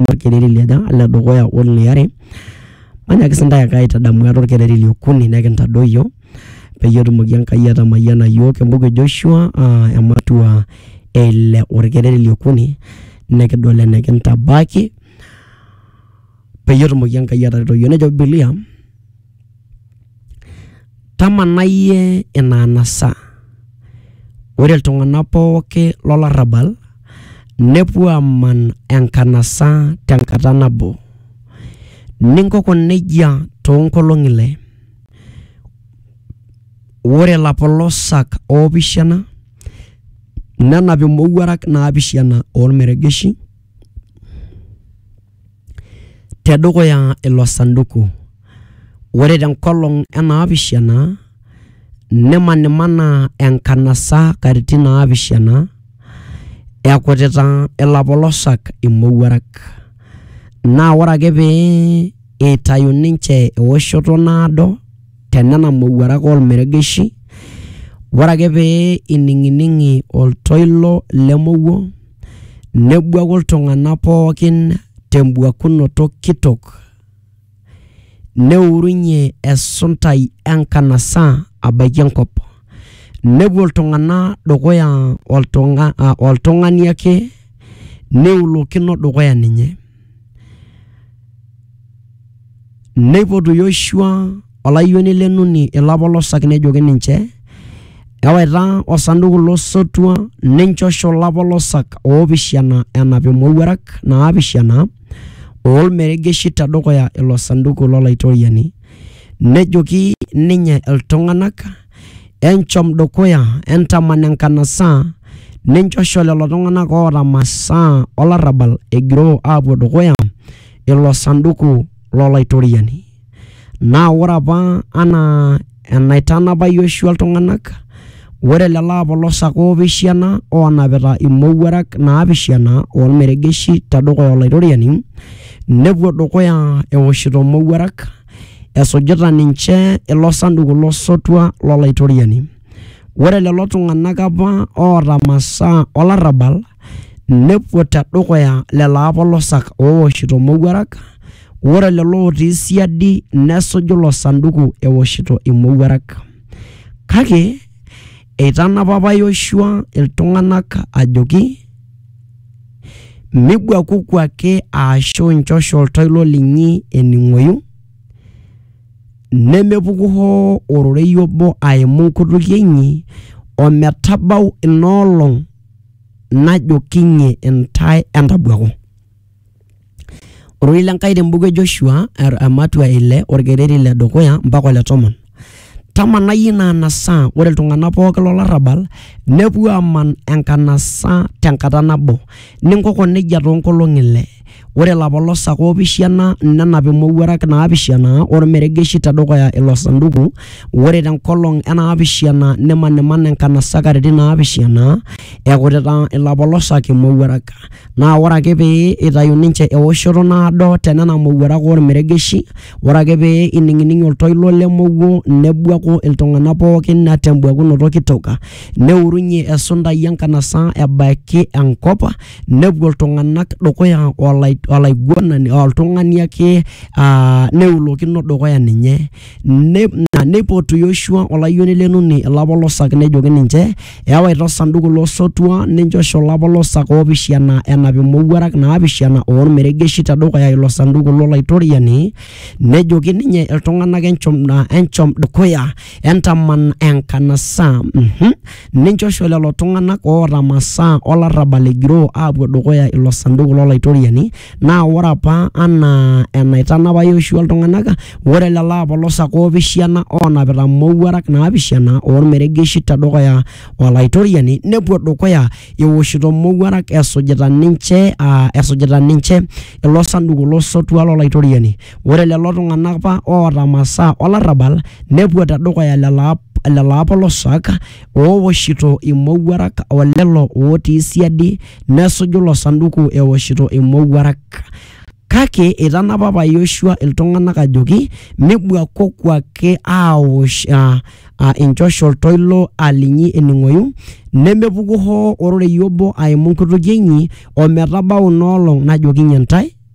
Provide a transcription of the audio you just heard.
olkereri liaja, ole dukuya o liare. Manyaaki sii intae ake aitadamu ate olkereri le okuni nekintadoyio peyie etumoki Enkai atamayiana iyiook. Embuku e Joshua ematua e ile olkereri le okuni nikidol enikintabaiki peyie etumoki Enkai atareto iyiook. Nejo Bibilia. Tamanayie ina anasa, ore iltung'anak pooki lo larrabal nepuo aaman enkanasa te nkata nabo. Ninkoko neijia too nkolong'i ile, ore ilapolosak oopishana nenap imowuarak naapishana oo lmeregeshi. tedukuya ilo sanduku. Ore tenkolong enaapishana, nimanimana enkanasa katitin naapishana, ekutita ilapolosak imowuarak. Na ore ake pee itayu ninche ewoshoto naado, tenena mowuarak ormeregeshi, ore ake pee ining'ining'i oltoilo lemowuo, Nebuaku iltung'ana pookin tembuakunoto kitok, neurunye esuntai enkanasa abaiki enkop. Nepuo iltung'ana dukuya oltung'a- ah, oltung'ani ake neulokino dukuya ninye. Neipotu Yoshua olayioni le Nuni ilapolosak nejoki ninche, Ewaita osanduku lo sotua ninchosho ilapolosak oopishana enap imowuarak naapishana oo lmeregeshi te dukuya ilo sanduku lo Laitoriani. Nejoki ninye iltung'ana, Enchom dukuya, entaman enkanasa, ninchosho lelo tung'ana oota masaa o larrabal egiroo aapuo dukuya ilo sanduku lo Laitoriani. Naa ore apa anaa enaitanapa Yoshua iltung'ana, ore lelo apolosak oopishana oonapita imowuarak naapishana o lmeregeshi te dukuya Olaitoriani, nepuo dukuya eoshito imowuarak. esujita ninche ilo sanduku lo sotua lo Laitoriani. Ore lelo tung'ana apa oata masaa o larrabal nepuo te dukuya lelo apolosak ooshito imowuarak, ore lelo otii siadi nesuju ilo sanduku eoshito imowuarak. Kake eitanapa apa Yoshua iltung'ana ajoki. migwakuku ake aashu nchosho oltoilo linyi ening'oyu, nemepuku hoo ororei obo aimu nkutukie inyi, o metabau ina olong' najokinye intae entabwaku. Ororei le Nkai te mbuku e Joshua ematua e ile olkereri le dukuya mpaka ole tomon. Tamanai ina anasa, ore iltung'ana pooki lo larrabal nepuo aaman enkanasa te nkata nabo, ninkoko neijia too nkolong'i ile. Ore ilapolosak oopishana nenap imowuarak naapishana o lmeregeshi te dukuya ilo sanduku, ore te nkolong e naapishana nimaniman enkanasa katitin naapishana ekutita ilapolosak imowuarak. naa ore ake pee itayu ninche ewoshoto naado te nena mowuarak ormeregeshi, ore ake pee ining'ning' oltoilo le mowuo nebuaku iltung'anak pookin te mbuakunoto kitok, neurunye esundai e nkanasa ebaiki enkop nepuo iltung'anak dukuya olai olaiguanani oltung'ani ake aa neulokino dukuya ninye. Ne- na neipotu Yoshua olayioni le Nuni ilapolosak nejoki ninche, Ewaita osanduku lo sotua ninchosho ilapolosak oopishana enap imowuarak naapishana oo lmeregeshi te dukuya ilo sanduku lo Laitoriani, nejoki ninye iltung'anak enchom, na, enchom dukuya entaman enkanasa. Mhm. Ninchosho lelo tung'anak oota masaa o larrabal egiroo aapuo dukuya ilo sanduku lo Laitoriani, Naa ore apa anaa enaitanapa Yoshua iltung'ana, ore lelo apolosak oopishana oonapita imowuarak naapishana o lmeregeshi te dukuya o Laitoriani nepuo dukuya eoshito imowuarak esujita ninche aa esujita ninche ilo sanduku lo sotua lo Laitoriani. Ore lelo tung'ana apa oota masaa o larrabal nepuo te dukuya lelo apolosak ooshito imowuarak o lelo ootii siadi nesuju ilo sanduku eoshito imowuarak. Kake eitanapa apa Yoshua iltung'anak ajoki mibuakoku ake aaosh uh, uh, inchoshol toilo alinyi ening'oyu nemepuku hoo ororei obo aimu nkutukie inyi ometabau inoolong najokinye ntae